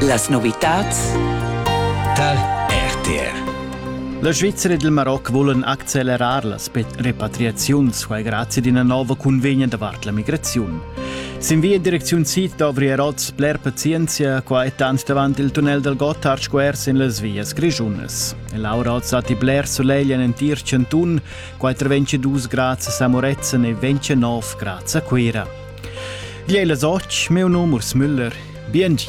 Las novitads tal RTR La Svizzera e il Maroc volen accelerar la repatriaziun squai grazie d'ina nova convegna davart la migraziun. Sin via in direcziun sid dovri er oz bler pazienza, qua è tant davant il tunnel dal Gotthard Square sin las vias grischunas. E Laura oz datti bler solegl en entir chantun, qua traventscha dus grads a Samorezen e ventscha nov grads a Cuira. Gliei las och, meu num Urs Müller. Biengi.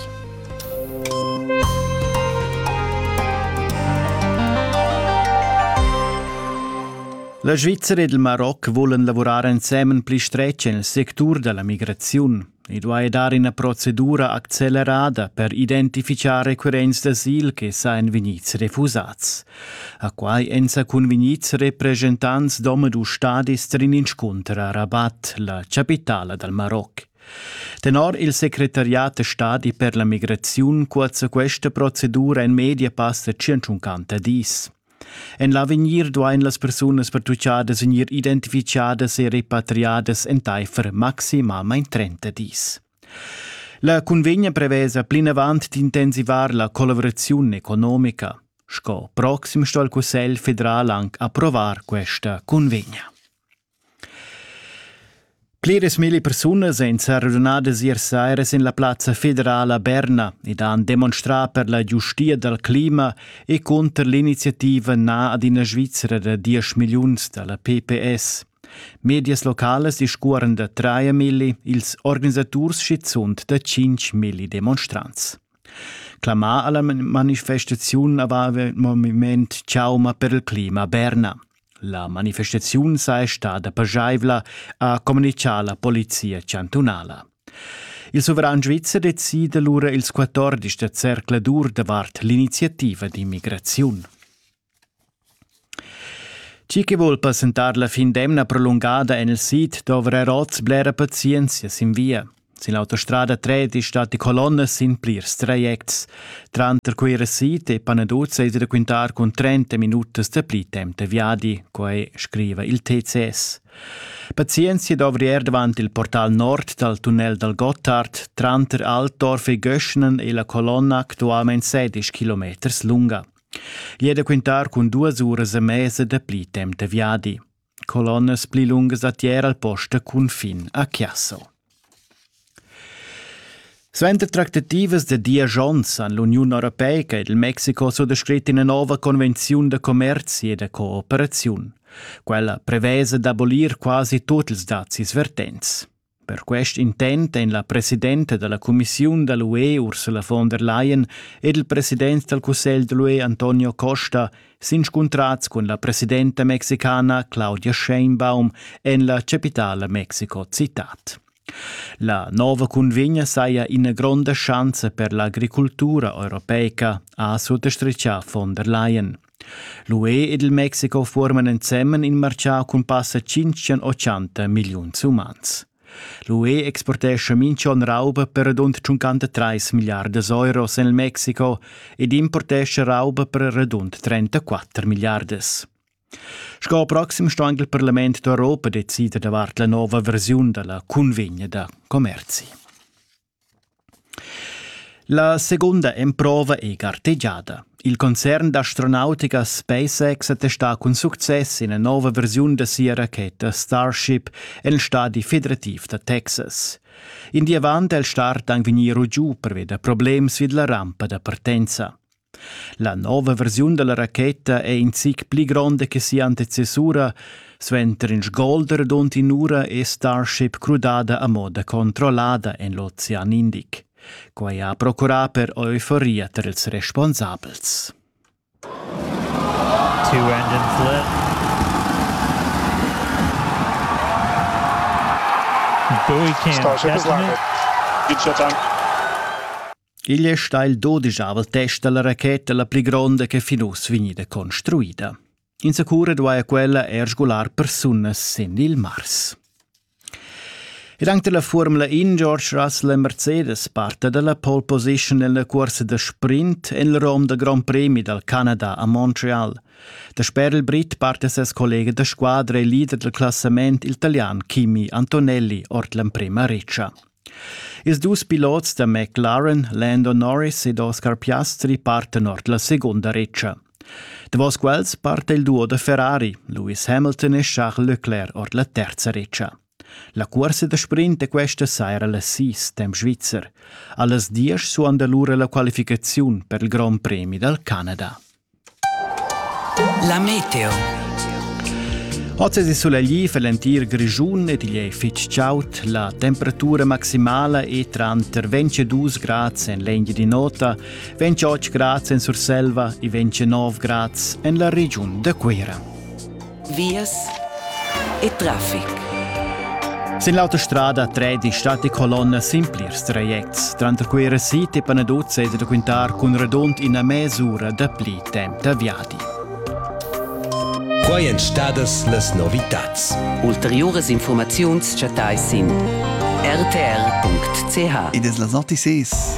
La Svizzera ed il Maroc volen lavorar ensemen pli stretg nel sectur della migraziun. I duai dar ina procedura accelerada per identificar requirents d'asil che sa en vegnits refusats. A quai èn sa cunvegnids represchentants d'omadus stadis trin inscunter a Rabat, la chapitala dal Maroc. Tenor il secretariat da stadi per la migraziun cuazza questa procedura en media passa 150 dis. En l'avegnir duain las persunas pertuchadas vegnir identifichadas e repatriadas entaifer maximamain 30 dis. La cunvegna prevesa plinavant d'intensivar la collavuraziun economica. Sco proxim sto il Cussegl federal anc approvar questa cunvegna. Pliras mille persunas èn radunadas ier saira sin la plazza federala Berna ed han demonstrà per la giustia dal clima e cunter l'iniziativa na ad ina Svizra da 10 milliuns da la PPS. Medias localas discuoran da traemilli, ils organisaturs schizunt da tschinchmilli demonstrants. Clamà alla manifestaziun aveva il moviment Ciauma per il clima Berna. La manifestaziun saja stada pajaivla, ha communichà la polizia chantunala. Il suveran svizzer decida lura ils 14 da zercladur davart l'iniziativa d'immigraziun. Chi chi voul passentar la fin d'emna prolungada en il sid dovra er oz blera pazienzia sin via. Sin l'autostrada tredisch datti colonnas sin plirs trajects. Tranter Cuira Sid e Panaduz è da quintar cun 30 minutas da pli temp da viadi, quai scriva il TCS. Pazienzia dovri er davant il portal nord dal tunnel dal Gottard tranter Altdorf e Göschnen e la colonna actualmain 16 km lunga. Gli è da quintar cun duas uras e mesa da pli temp da viadi. Colonnas pli lungas a tier al post da confin a Chiasso. Suenter tractativas da Diagions an l'Uniun Europeica ed il Mexico so descrit ina nova convenziun da commerzi e da cooperaziun. Quella prevesa d'abolir quasi tuts ils dazis vertents. Per quest intent ein la presidenta dalla cumissiun da l'UE Ursula von der Leyen ed il president dal cussegl dall'UE Antonio Costa s'inscuntrats cun la presidenta mexicana Claudia Sheinbaum en la capitala Mexico citad. La nova cunvegna saja ina gronda schanza per l'agricultura europeica, ha suttastritgà von der Leyen. L'UE ed il Mexico fuorman ensemen in marciau cun passa tschintg-ochanta milliuns umans. L'UE exportescha minch'on rauba per radund 53 milliardas euros en il Mexico ed importescha rauba per radund 34 milliardas. Sco proxim sto anche il Parlament d'Europa decider davart la nova versiun della convegna da commerzi. La seguonda emprova ei gartegiada. Il concern d'astronautica SpaceX ha testà cun success ina nova versiun da sia racheta Starship en il stadi federativ da Texas. In di avant è il start anc vegnì giu pervi da problems vid la rampa da partenza. La nova versiun dalla racheta è in zic pli gronda che sia antecessura, suenter in sgolder dont in'ura è Starship crudada a moda controllada en l'ocean Indic. Quai ha procurà per euforia tar ils responsabels. Two engines lit. Bowie Cam. Starship is landed. Good shot time. Igl è stà il dodichavel test da la racheta la pli gronda che fin uss vegnida construida. Insacura duaja quella er sgular persunas sin il Mars. Ed anche la Formula In George Russell e Mercedes parta dalla pole position en la cursa da sprint en il rom del Grand Prix dal Canada a Montreal. Dasper il Brit parte ses collega da squadra e leader del classament italian Kimi Antonelli ord l'emprema reccia. Ils dus pilots da McLaren, Lando Norris ed Oscar Piastri partan ord la segunda retscha. Davos quels parta il duo da Ferrari, Lewis Hamilton e Charles Leclerc ord la terza retscha. La cuorsa da sprint da questa saira la sis temp svizzer. Allas diesch suonda lura la qualificaziun per il Grand Premi dal Canada. La meteo. Oz es il sulegl per l'entir Grischun ed igl è fitg chaud. La temperatura maximala è tranter 22 grads en l'Engiadin'Ota, 28 grads en Surselva e 29 grads en la regiun da Cuira. vias e traffic. Sin l'autostrada 13 stat die colonna simpliers trajects, tranter quei resiti Panaduzza e da quintar cun radund ina mesura da pli temp da viadi. Quai èn stadas las novitads. Ulteriuras informaziuns chattais sin rtr.ch. Ed es las antices.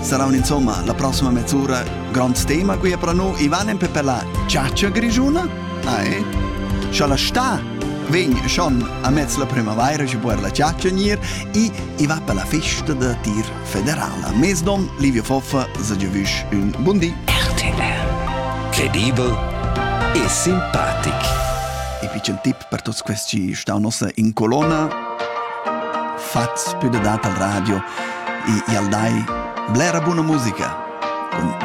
Saran insomma la prossima mezz'ora gronds tema qui a Pranu Ivan en per la Ciaccia Grigiuna? Ah, eh? Scha la sta vegn schon a mezz la primavaira ci puer la ciaccia nir i i va per la festa da tir federala. Mes don Livio Foffa se giovüsch un bundi. RTL Credibel e simpatic. E piccen tip per tuts questi stau nossa in colonna fats pü da dat al radio e i'l dai blera buna musica cun